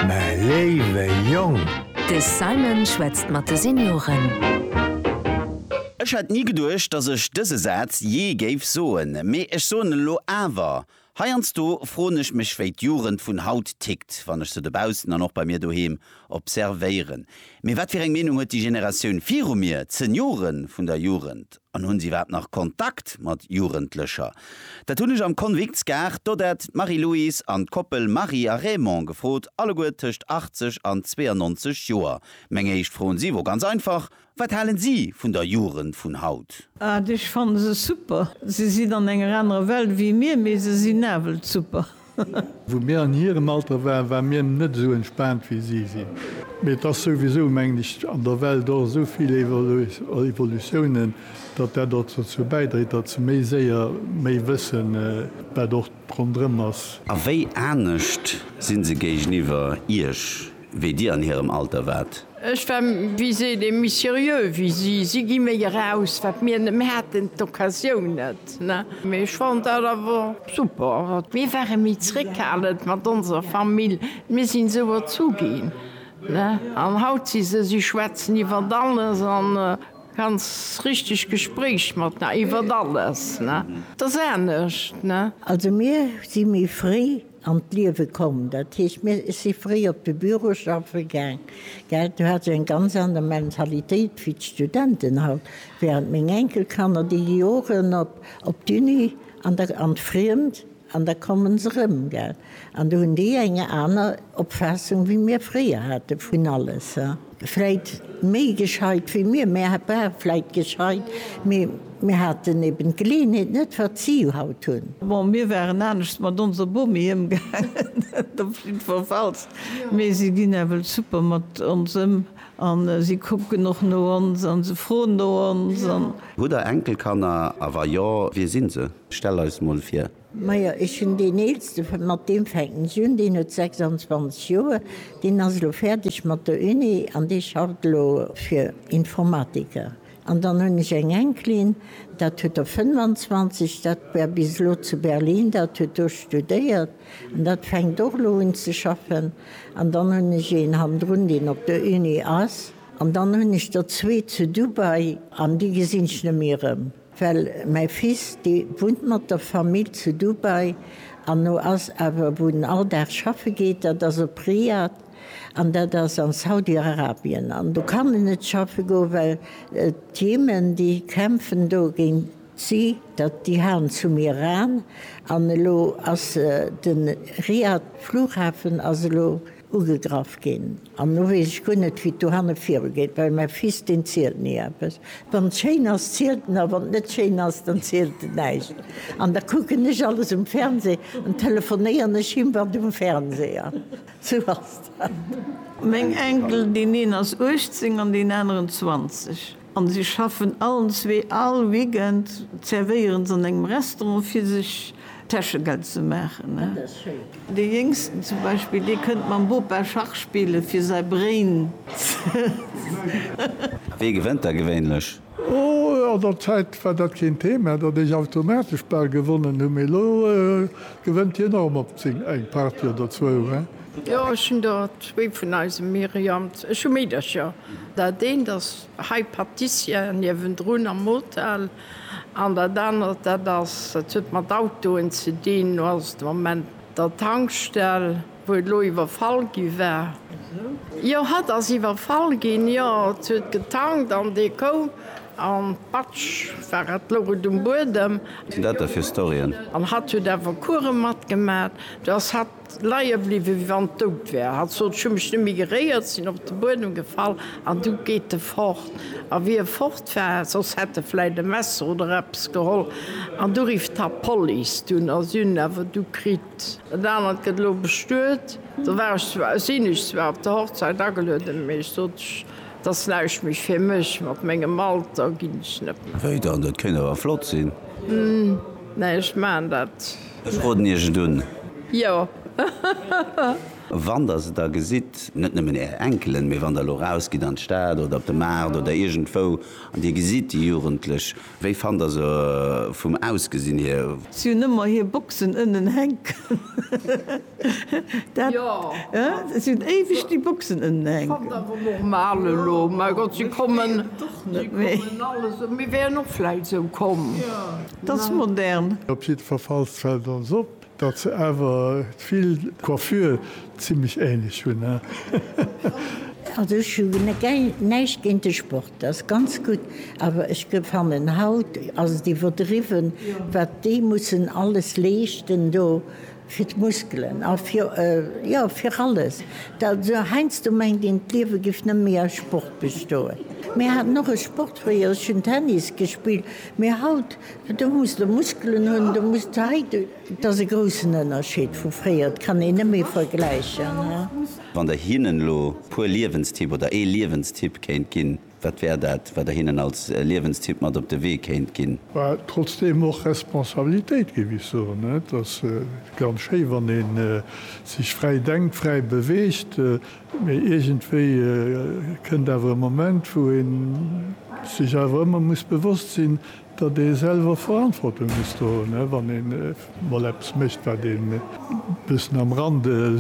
mä léiwe Jong! De Simon schwätzt mat de Senioren. Ech hätt ni geduecht, dass ech dëse Saz jee géif soen, mee ech soen en elo awer. Heiansdo froen ech mech, wéi d'Jugend vun haut tickt, wann ech se dobaussen an och bei mir doheem observéieren. Mee wat fir eng Meenung huet déi Generatioun viru mir, d'Seniore vun der Jugend? An hunn se iwwerhaapt nach Kontakt mat Jugendlecher? Dat hunn ech am Konviktsgaart d'Odette, d'Marie-Louise an d'Koppel Marie a Raymond gefrot, alleguer tëscht 80 an 92 Joer. Meng éischt Fro un si wor ganz einfach, Wat halen si vun der Jugend vun haut? Ah, ech fanne se super. Se sinn an enger anerer Welt wéi mir, mee se sinn nawell super. Wou mir an hirem Alter waren, ware mir net esou entspaant wéi si sinn. Mee et ass souwisou, mengen ech, an der Welt och esou vill Evolutiounen, datt dat och dozou bäidréit, datt se méi séier méi wëssen, wat och ronderëm ass. A wéi anescht si se géigeniwwer Iech? wéi dir an hirem Alter waart. Ech war, wéi seet ee, méi seriö wéi si. Si gi méi eraus, wat mir net méi haten, d'Occasioun net. Mee ech fand dat awer super. Mir ware méi zréckhalend mat onser Famill, mir sinn esou erzu ginn. An haut si se, si schwätzen iwwert alles a ganz richteg Gespréich mat, iwwert alles. Dat ass anescht. Also mir si méi fréi an d'Liewe komm. Dat heescht, mir si fréi op de Büro schaffe gaang, gell. Du hat se eng ganz aner Mentalitéit wéi d'Studenten haut. Wärend meng Enkelkanner, déi gi Joren op op d'Uni an da an d'Friemt an da komme se erëm, gell. An do hunn déi eng aner Opfaassung, wéi mir fréier hate vun alles, he. Vläit méi gescheit wéi mir, mir ware vläit gescheit, mee mir haten eben d'Geleeënheet net, wat si haut hunn. Bon, mir waren anescht mat onser Bomi ëmgaangen, dat op jiddwerfalls, mee si ginn nawell super mat ons ëm a si kucken och no ons a se froen no ons. Hutt Der Enkelkanner, a wa jo, wie si se? Stell eis mol vir. Majo, ech hunn deen Eelste, mat deem fänken ech un, deen huet 26 Joer, deen ass elo fäerdeg mat der Uni an dee schafft elo fir Informatiker. An dann hunn ech eng Enkelin, dat huet der 25, dat war bis elo zu Berlin, dat huet do studéiert an dat fänkt och elo un ze schaffen. An dann hunn ech een hannendrun, deen op der Uni ass. An dann hunn ech der zwee zu Dubai an déi gesinn ech net méi erëm. Well mäi Fils, dee wunnt mat der Famill zu Dubai an no ass awer, wou en all Dag schaffe geet, dat ass op Riyad an dat ass an Saudi-Arabien. An do kann en net schaffe goen, well d'Jemen, déi kämpfen do géint si, dat déi haen zum Iran an elo ass de Riyad Flughafen ass elo, Ugegraff ginn, an lo weess ech guer net, wéi et dohanne virugeet, well mäi Fils, deen zielt ni eppes. Wann et schéin ass, zielt en, a wann et net schéin ass, dann zielt en näischt. An da kucken ech alles um Fernseh an telefonéieren ech him wat um Fernseh ass. Sou ass dat. Meng Enkel, deen een ass 18 an deen aneren 20. An si schaffen allen zwee. All Weekend zerwéieren s'an engem Restaurant fir sech Täschegeld ze maachen. De Jéngsten zum Beispill, dee kënnt mam Bopa Schach spillen fir säi Brain ze. A wee gewënnt da gewéinlech? Oh, an der Zäit war dat keen Thema, datt ech automatesch bal gewonnen hunn, mee elo gewënnt hien och mol zéng eng Partie oder zwou. Jo, ech hunn der zwee vun eisem Myriam. Ech hu Meedercher. Dat eent ass hei Patissier niewendrun am Hotel an dat anert, dat ass, dat huet mat Autoen ze dinn, do ass et de Moment der Tankstell, wou et elo iwwerfall gi war. Jo, hatt ass iwwerfall ginn, jo, et huet getankt an dee koum an patsch war et, louch et um Buedem. Wat sinn dat da fir Storyen? An hatt huet awer Course matgemat, do ass hatt Leie bliwwen, wéi wann et dout wär. Hatt sot, Ech hu mech net méi geréiert, sinn op de Buedem gefall an du geet e fort. A wéi e fort war, soss hätt e vläit e Messer oder eppes geholl, an du rifft hatt d'Police. Dunn ass un, awer du kritt. Dat anert gëtt elo bestuet. Do war ech zwar, sinn ech zwar op der Hochzäit agelueden, mee ech sot, Et ass näischt méi fir mech, mat mengem Alter ginn ech net méi. Wéi dann, dat kéint awer flott sinn? Neen, ech maachen dat. Ech roden iech et un. Jo. Wann der se da gesitt, net nëmmen är Enkelen, mee wann der elo rausgitt an d'Stad oder op de Maart oder iergendwou an dir gesitt déi Jugendlech, wéi fannt der se vum Ausgesinn hier? Si hunn ëmmer hir Boxen ënnen hänken. Op jidde Fall fallt fällt ons op dat se awer vill d'Coiffure zimlech ähnlech hun he. Also ech hu näischt géint de Sport, ass ganz gutt, awer ech fannen haut ass et iwwerdriwwen wat déi mussen alles leeschten do Fir d'Muskelen a fir, jo, fir alles. Also heiansdo mengt een, d'Liewe géif net méi aus Sport bestoen. Mir haten och e Sport fréier, ech hunn Tennis gespillt. Mee haut, do muss de Muskelen hunn, do muss de hei, et ass e groussen Ënnerscheed vu fréier, et kann een net méi vergläichen. Wann Der hinnen elo e puer Liewenstipp oder ee Liewenstipp kéint ginn? Wat wär dat, wat Der hinnen als Liewenstipp mat op de Wee kéint ginn? Well trotzdeem och Responsabilitéit, géif ech soen. Et ass ganz schéi, wann ee sech fräi denkt, fräi beweegt, mee iergendwéi kënnt awer e Moment, wou ee sech awer ëmmer muss bewosst sinn, datt ee selwer Verantwortung muss do hunn, wann ee mol eppes mécht, wat ee e bëssen am Rande.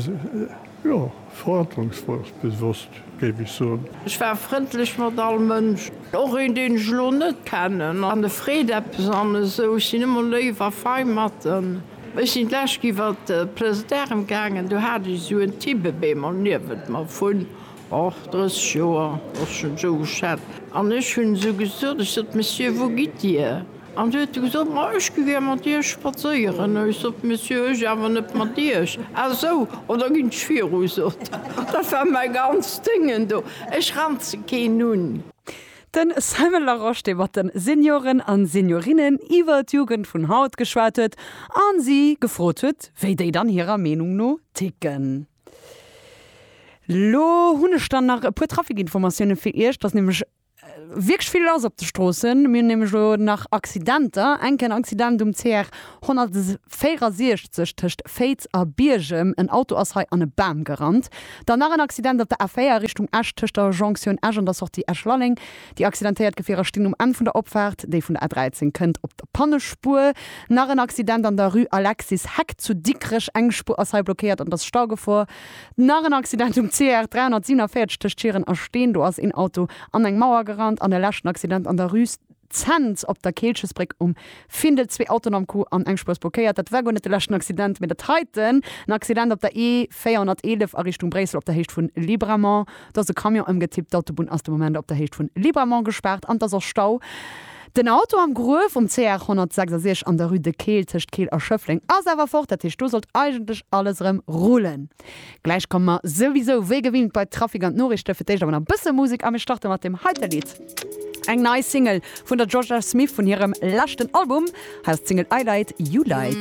Jo, verantwortungsbewosst géif ech soen. Ech war frëndlech mat all Mënsch. Och een deen ech elo net kennen an e freet eppes an esou. Ech sinn ëmmer léif a fei mat en. Ech sinn d'lescht iwwert de Place d'Armes gaangen, do hat ech esou en Tibbebémol niewent mer vun, och, 30 Joer, ass schonn esou geschätzt, an ech hunn esou gesot, ech sot, Monsieur, wou gitt Dir? An si huet gesot, Ma ech gi gär mat Iech spadséieren. Ech sot, Monsieur, ech awer net mat Iech. A sou, oh, da ginn ech viru, sot en. Dat war mäi ganzt Déngen do. Ech ranze keen un. De Simon Larosche, dee mat de Senioren a Seniorinnen iwwer d'Jugend vun haut geschwat huet a si gefrot huet, wéi déi dann hirer Meenung no ticken. Lo hunn ech dann nach e puer Trafikinformatioune fir Iech. Dat ass nämlech Wierklech vill lass op de Stroossen. Mir hunn nämlech elo nach Accidenter. Enk en Accident um CR 164 tëscht Féiz a Biergem. En Auto ass hei an e Bam gerannt. Dann nach en Accident op der A4 Richtung Esch tëscht der Jonction Esch an der Sortie Esch-Lalleng. Déi accidentéiert Gefierer stinn um Enn vun der Opfaart, déi vun der A13 kënnt, op der Pannespuer. Nach en Accident an der Rue Alexis Heck zu Dikrech. Eng Spuer ass hei blockéiert an et ass Staugefor. Nach en Accident um CR 347 tëscht Schieren a Steen. Do ass een Auto an eng Mauer gerannt. An e leschten Accident an der Rue Zens op der Keelchesbréck um Findel. Zwee Autoen am Coup an eng Spuerspuer kéiert. Dat war guer net de leschten Accident, mee dat heiten. En Accident op der E 411 a Richtung Bréissel op der Héicht vu Libramont. Do ass e Camion ëmgetippt. D'Autobunn ass de Moment op der Héicht vu Libramont gespaart an et ass och Stau. Den Auto am Gruef um CR 166 an der Rue de Keel tëscht Keel a Schëffleng ass awer fort, dat heescht do sollt eigentlech alles erëm rullen. Gläich komme mer souwisou wéi gewinnt bei Trafic an d'Noriichte, fir d'éischt awer nach e bësse Musek a mir starte mat deem heite Lidd. Eng nei Single vun der Jorja Smith vun hirem leschten Album, hei ass d'Single I Light, You Light.